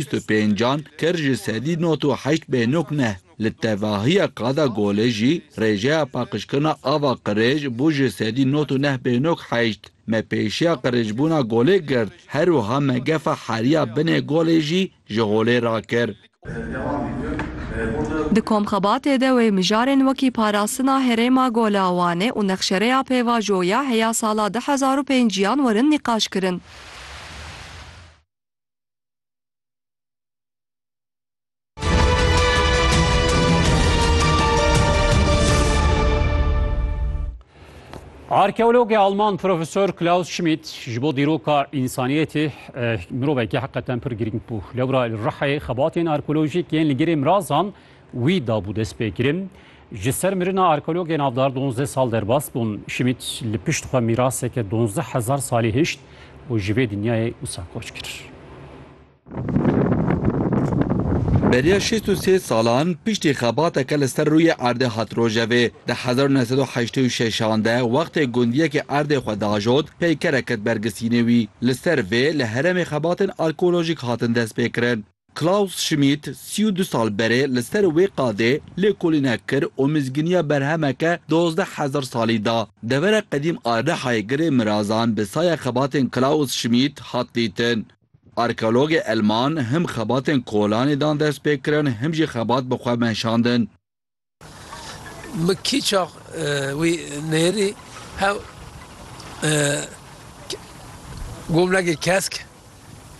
Bîst û pêncan kir ji sedî nod û heşt bêhnok ne. Li tevahiya qada Golê jî rêjeya paqijkirina ava qirêj bû ji sedî nod û neh bêhnok heşt. Me pêşiya qirêjbûna Golê girt, her wiha me gefa heriya binê Golê jî ji holê rakir. Di komxebatê de wê mijarên wekî parastina herêma Gola Wanê û nexşereya pêvajo ya heya sala du hezar û pêncî yan werin nîqaşkirin. Arkeologê Alman Profesor Klaus Schmidt ji bo dîroka însaniyetê mirovekî heqeten pir girîng bû. Lewra li Rihê xebatên arkeolojîk yên li girê mirazan Wî dabû destpêkirin. Ji ser mirina arkeologê navdar donzdeh sal derbas bûn. Schmidt li pişt xwe mîraseke donzdeh hezar salî hişt û ji vê dinyayê wisa koç kir. Beriya şêst û sê salan piştî xebateke li ser rûyê erdê hat rojevê. Di hezar û neh sed û heştê û şeş an de wextê gundiyekê erdê xwe diajot peykerek ket bergisînê wî. Li ser vê li herêmê xebatên arkeolojîk hatin destpêkirin. Klaus Schmidt sî û du sal berê li ser wê qadê lêkolînek kir û mizgîniya berhemeke dozdeh hezar salî da. Devera qedîm a Rihayê Girê Mirazan bi saya xebatên Klaus Schmidt hat dîtin. Arkeologê Elman him xebatên kolanê dan destpêkirin him jî xebat bi xwe meşandin. Min kî çax wî nêrî hew gomnegê kesk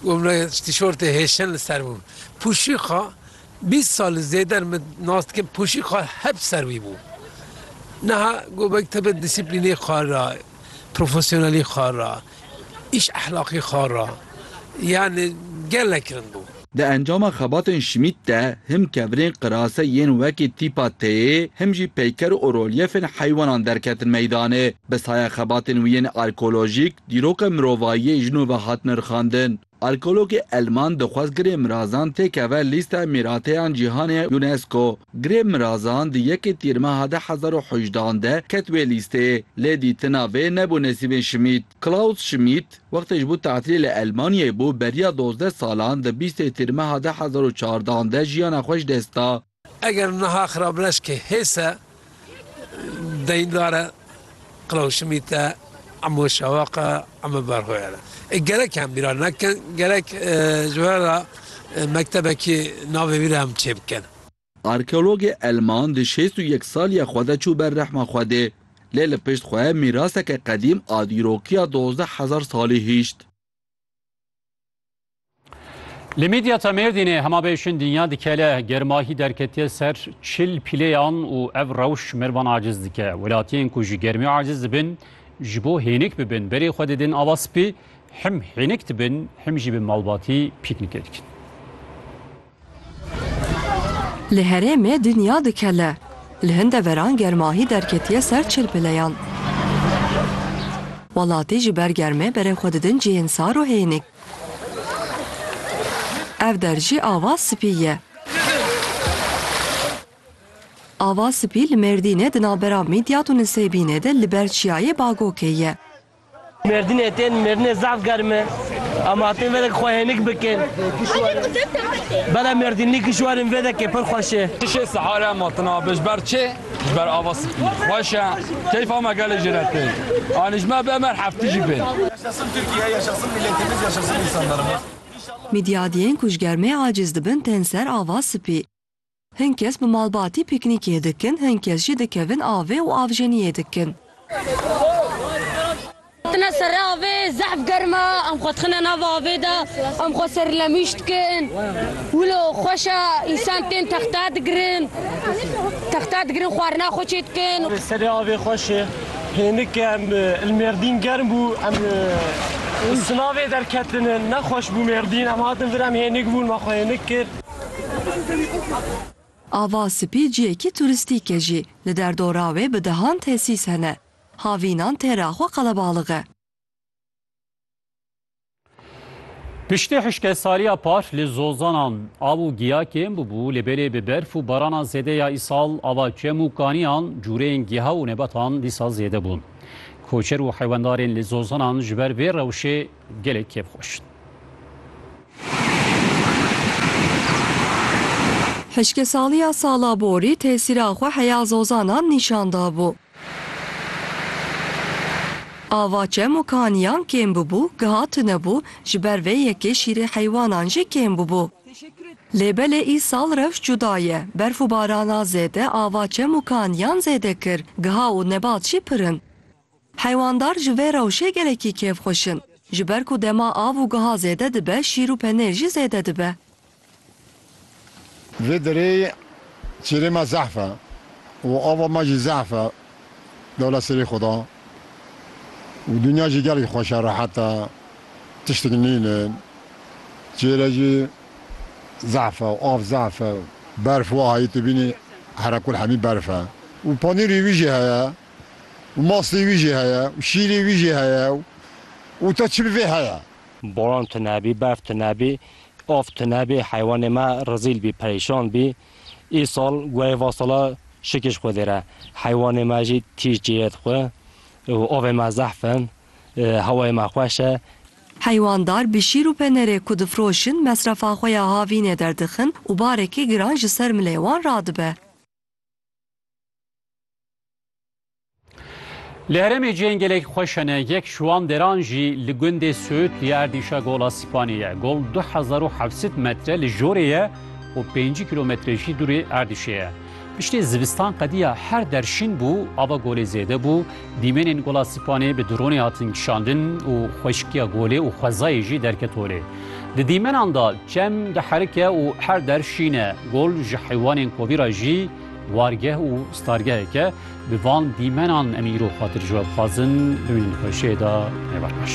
gomnegê tîşortê hêşin li ser bû. Pûşîxa bîst sal li zêder min nas dikim pûşîxa hep ser wî bû. Niha gobek tebe dîsîplînê xwe ra Profesyonelî xwe re, îş ehlaqî xwe re yanî gelek kirin bû. Di encama xebatên Schmidt de him kevirên qirase yên wekî tîpa têyê him jî peyker û rolyefên heywanan derketin meydanê. Bi saya xebatên wî yên arkeolojîk, dîroka mirovayiyê jin û ve hat nirxandin. Arkeologê Elman dixwest Girê Mirazan têkeve lîsteya Mîrateyan Cîhanê ya UNESCO. Girê Mirazan di yekê Tîrmeha du hezar û hejde an de ket wê lîsteyê, lê dîtina vê nebû nesîbên Şmît. Klaus Şmît, wextê ji bo tatilê li Elmanyayê bû, beriya dozdeh salan di bîstê Tîrmeha du hezar û çardeh an de jiyana xwe ji dest da. Eger niha xirableşkê hês e, deyndar e, Qilawşimît e, Emo Şewaq e, Emo Berxoyar e. Ê gerek em bîra nekin, gerek ji we re mektebekî navê wî re em çêbikin. Arkeologê Elman di şêst û yek saliya xwe de çû ber rehma Xwedê. Lê li pişt xwe mîraseke qedîm a dîrokiya dozdeh hezar salî hîşt. Li Midyata Mêrdînê hemabêşin dinya dikele germahî derketiye ser çil pîlêyan û ev rewş mervan aciz dike. Welatiyên ku ji germî aciz dibin ji bo hênik bibin berê xwe didin ava spî, him hênik dibin him jî bi malbatî pîknîkê dikin. Li herêmê dinya dikele. Li hin deveran germahî derketiye ser çilpileyan. Welatî ji ber germê berê xwe didin cihên sar û hênik. Ev der jî ava spî ye. Ava spî li Mêrdînê di navbera Mîdyat û Nisêbînê de li ber çiyayê Bagokê ye. Mêrdînê tên mêrdînê zaf germ e. Em hatin vê de xwe hênik bikin. Bela mêrdînlî kişwarên vê dekê pir xweş e. Tişê sihar em hatin avê ji ber çê? Ji ber ava spî. Xweş e. Keyfa me gelê jê re tên. Anî ji me bê em her heftî jî bên. Yaşasın Türkiye, yaşasın milletimiz, yaşasın insanlarımız. Midyadiyên ku ji germê aciz dibin tên ser ava spî. Hin kes bi malbatî pîknîkê dikin, hin kes jî dikevin avê û avjeniyê dikin. Tine ser avê, zehf germ e, em xwe dixine nav avê de, em xwe serlemîş dikin. Wilo xweş e, însan tên texta digirin, texta digirin xwarina xwe çê dikin. Avê serê avê xweş e. Hênik e em li mêrdîn germ bû, em li sinavê derketin, nexweş bû mêrdîn, em hatin vir em hênik bûn, me xwe hênik kir. Ava Spî ciyekî turîstîk e jî li derdora wê bi dehan tesîs hene. Havînan tê re xwe qelebalix e. Piştî hişkesariya par li zozanan av û giya kêm bûbû lê belê bi berf û barana zêde ya îsal ava çem û kaniyan, cûreyên giha û nebetan dîsa zêde bûn. Koçer û heywendarên li zozanan ji ber vê rewşê Gelek kêf xweş. Hişkesaliya sala borî tesîra xwe heya zozanan nîşan dabû. Ava çem û kaniyan kêm bûbû, giha tune bû, ji ber vê yekê şîrê heywanan jî kêm bûbû. Lê belê îsal rewş cuda ye, berf û barana zêde ava çem û kaniyan zêde kir, giha û nebat jî pir in. Heywandar ji vê rewşê gelekî kêf xweş in. Ji ber ku dema av û giha zêde dibe şîr û penêr jî zêde dibe. Vê derê çêrê me zehf e û ava me jî zehf e. Dewlet serê xwe da û dinya jî gelek xweş e, rehet e, tiştek nîne. Çêre jî zehf e, av zehf e. Berf wahayê tu bînî herekul hemî berf e û penêrê wî jî heye. û mastê wî jî heye û şîrê wî jî heye û te çi bi vê heye. Boran tune bî, berf tune bî, av tune bî, heywanê me rizîl bî, perêşan bî. Îsal guhê va sala şikîş xwedê re. Heywanê me jî tîj cêye dixwe û avê me zehf e, hewayê me xweş e. Heywandar bi şîr û penerê ku difiroşin mesrefa xwe ya havînê derdixin û barekî giran ji ser milê wan radibe. Li herêmê cihên gelek xweş hene yek ji wan deran jî li gundê Sûd li ya erdîşa Gola Sîpanê ye. Gol du hezar û heft sed metre li jorê ye û pêncî kîlometre jî dûrê erdîşê ye. Piştî zivistan qediya her der şîn bû, ava golê zêde bû, dîmenên Gola Sîpanê bi dronê hatin kişandin û xweşikiya golê û xwezayê jî derket holê. Di dîmenan de çem diherike û her der şîn e. Gol ji heywanên kovî re jî Wargeh û stargeheke bi van dîmenan em îro xatir ji we dixwazin bimînin xweşiyê de ne berpaş.